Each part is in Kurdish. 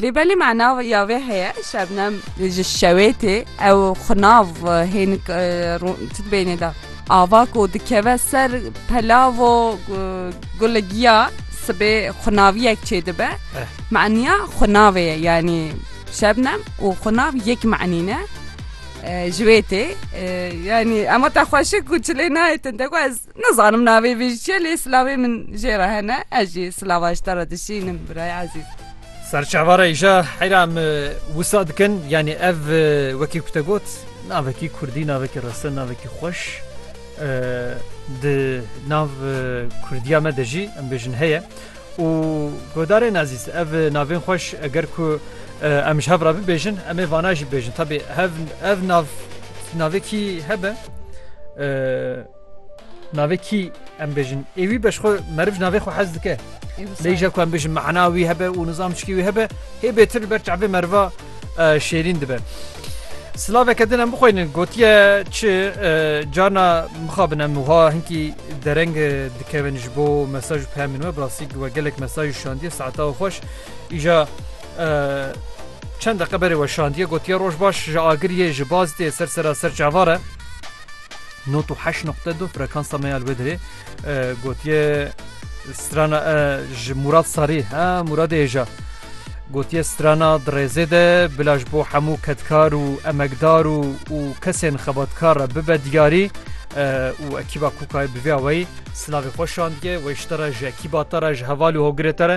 Lê belê mana ya vê heye Şebnem ji şewê tê ew xwe nav hênik tu dibênê de ava ku dikeve ser pelavo gule giya sibê xwinaviyek çêdibe maniya xwinavê ye yanî Şebnem û xwinav yek manî ne ji wê tê yanî ema te xweşik û çilê nayê te ku ez Nizanim navê vê ji çiye lê silavê min jê re hene. Ez jî silava ji te re dişînim birayê ezîz. Serçava re îja heyra me wisa dikin yanî ev wekî ku te got navekî kurdî navekî reste navekî xweş di nav kurdiya me de jî em bêjin heye û godarên ezîz ev navên xweş eger ku em ji hev re bibêjin em ê vana jî bêjin tabî hev ev nav navekî hebe Navê kî em bêjin ê wî be ji xwe meriv ji navê xwe hez dike. Lê je ku em bêjin mehna wî hebe û nizam çikî wî hebe hê bêtir li ber çavê meriva şêrîn dibe. Silaveke din em bixweynin gotiye çi carna mixabin em wiha hinkî dereng dikevin ji bo mesaj û pemên we birasî we gelek mesaj û şandiye saeta û xweş îja çend deqe berê we şandiye gotiye roj baş ji agiriyê ji baz tê ser sera ser çavare. Nod û heşt noqte du frekansa me ya li wê derê gotiye strana ji Murad Sarî ha Muradê hêja gotiye strana di rêzê de bila ji bo hemû kedkar û emekdar û û kesên xebatkar re bibe diyarî û ekîba Kûkayê bi vê awayî silavê xwe şandiye wê ji te re ji ekîba te re ji heval û hogirê te re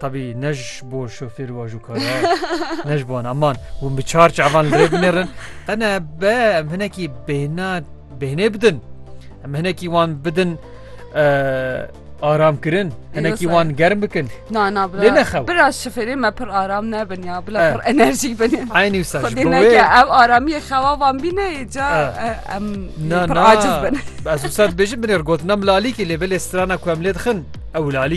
Tabî ne ji bo şofêr û ajûkara ne ji wan aman hûn bi çar çavan li rê binêrin qene be em hinekî bêhna bêhnê bidin em hinekî wan bidin aram kirin hinekî wan germ bikin na na lê nexew bira şifêrê me pir aram nebin ya bila pir enerjî bin aynî wisa ev aramiyê xewa van bîne ca em pir aciz bin ez wisa dibêjin binêr gotina milalîkê lê belê strana ku em lê dixin ew lalî